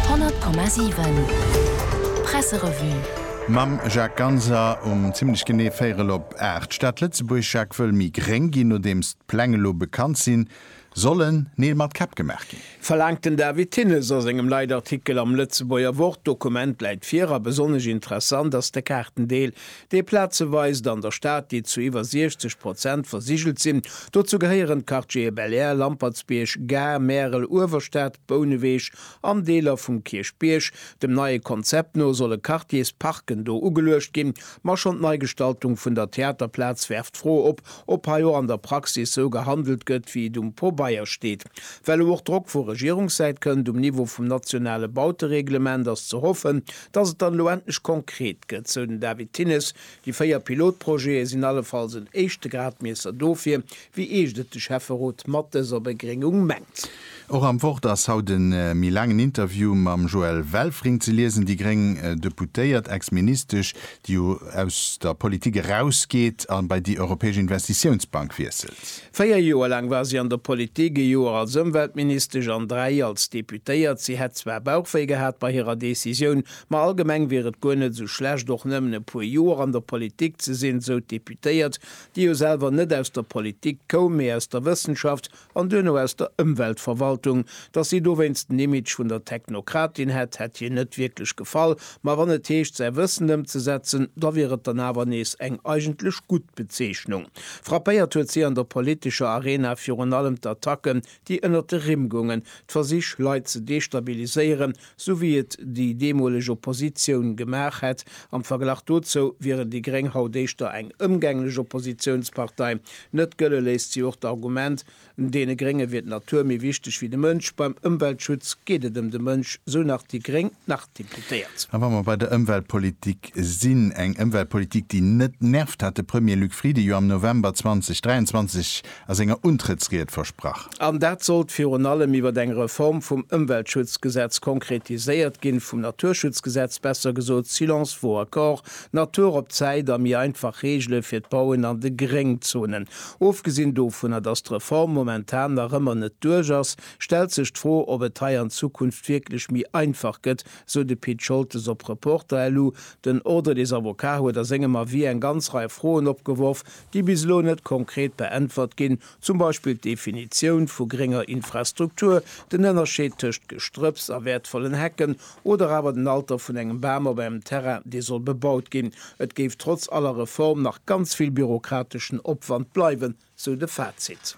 100,7 Presserevue. Mam Jacques Ganser um zimmlech genee véierel op aacht. D'Stad Lëtzebuerg, Jacques, wëll méi gréng ginn. Nodeems d'Pläng elo bekannt sinn, sollen Neel mat Käpp gemaach ginn. Verlaangt den David Thinnes a sengem Leitartikel am Lëtzebuerger Wort. D'Dokument läit vir a besonnesch interessant ass de Kaartendeel, dee Plaze weist an der Stad, déi zu iwwer 60 Prozent versigelt sinn. Dozou gehéieren d'Quartiere Bel'Air, Lampertsbierg, Gare, Märel, Uewerstad, Bouneweg an Deeler vum Kierchbierg. Dem neie Konzept no solle Quartiers Parken do ugeluecht ginn. Ma schonn d'Neigestaltung vun der Theaterplaz werft d'Fro op, ob hei och an der Praxis sou gehandelt gëtt, wéi et um Pobeier steet. Well elo och Drock vu Regierungssäit kënnt um Niveau vum nationale Bautereglement, ass ze hoffen, Dass et dann elo endlech konkret gëtt, sou den David Thinnes. Déi véier Pilotprojete sinn allefalls en éischte Gradmiesser dofir, wéi eescht et de Schäfferot mat dëser Begréngung mengt. Och am Wort ass haut e méi laangen Interview mam Joëlle Welfring ze liesen. Déi gréng Deputéiert, Ex-Ministesch, déi jo aus der Politik erausgeet a bei déi Europäesch Investitiounsbank wiesselt. Véier Joer laang war si an der Politik, e Joer als Ëmweltministesch an dräi als Deputéiert. Si hätt zwar Bauchwéi gehat bei hirer Decisioun, ma allgemeng wier et guer net esou schlecht, och nëmmen e puer Joer an der Politik ze sinn, esou d'Deputéiert, déi jo selwer net aus der Politik koum, mee aus der Wëssenschaft. an duerno aus der Ëmweltverwaltung, dass si dowéinst den Image vun der Technokratin hätt, hätt hir net wierklech gefall, ma wann et heescht, säi Wëssen ëmzesetzen, da wier et dann awer nees eng eigentlech gutt Bezeechnung. Frappéiert huet si an der politescher Arena virun allem d'Attacken, déi ënnert de Rimm goungen, d'Versich, Leit ze destabiliséieren, sou wéi et déi deemoleg Oppositioun gemaach hätt, am Verglach dozou wieren déi Gréng haut éischter eng ëmgänglech Oppositiounspartei. Net gëlle léisst si och d'Argument, Deene Grénge wier d'Natur méi wichteg wéi de Mënsch. Beim Ëmweltschutz geet et ëm de Mënsch, sou nach déi gréng Nach-Deputéiert. A wa mer bei der Ëmweltpolitik sinn, eng Ëmweltpolitik, déi net nervt, hat de Premier Luc Frieden jo am November 2023 a senger Untrëttsried versprach. An dat sollt virun allem iwwer eng Reform vum Ëmweltschutzgesetz konkretiséiert ginn, vum Naturschutzgesetz, besser gesot Silence vaut accord, Natur op d'Säit a méi einfach Reegele fir d'Bauen an de Gréngzonen. Ofgesinn dovunner, datt d'Reform momentan nach ëmmer net duerch ass, stellt sech d'Fro, ob et hei an Zukunft wierklech méi einfach gëtt, sou de Pit Scholtes op Reporter. LU, Den Ordre des avocats huet a sengem Avis eng ganz Rei Froen opgeworf, déi bis elo net konkret beäntwert ginn, zum Beispill d'Definitioun vu grénger Infrastruktur, den Ënnerscheed tëscht Gestrëpps a wäertvollen Hecken oder awer den Alter vun engem Bam op engem Terrain, dee soll bebaut ginn. Et géif trotz aller Reform nach ganz vill bürokrateschen Opwand bleiwen, sou de Fazit.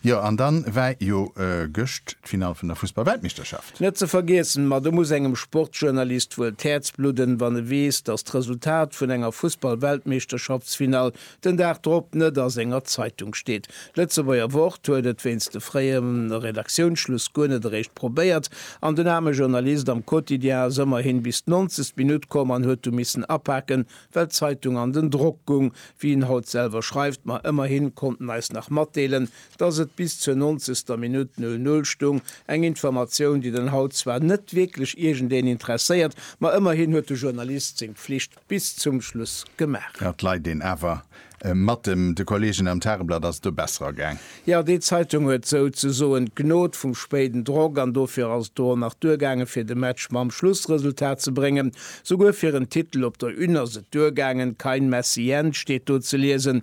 Jo, an dann war jo gëscht. d'Finall vun der Fussballweltmeeschterschaft. Net ze vergiessen, ma do muss engem Sportjournalist wuel d'Häerz bludden, wann e weess, datt d'Resultat vun enger Fussballweltmeeschterschaftsfinall den Dag drop net a senger Zeitung steet. D'Lëtzebuerger Wort huet et wéinst de fréie Redaktiounsschluss guer net eréischt probéiert, an den aarme Journalist am Quotidien ass ëmmerhin bis d'nonzegst Minutt komm an huet du missen apaken, well d'Zeitung an den Drock gung. Wéi en haut selwer schreift, Ma ëmmerhin konnt en eis nach matdeelen, Dass et bis zur nonzegster Minutt Null Null stung, eng Informatioun, déi den haut zwar net wierklech iergendeen interesséiert, ma ëmmerhin huet de Journalist seng Pflicht bis zum Schluss gemaach. Jo, d'Leit een awer. Matt dem de Kollegen am Tageblatt ass et do besser agaang. Jo, déi Zeitung huet sou ze soen d'Gnod vum spéiden Drock an dofir ass et do och nach duergaangen fir de Match mam Schlussresultat ze bréngen. Souguer fir en Titel op der Une ass et duergaangen, Kein Messi Jens steet do ze liesen.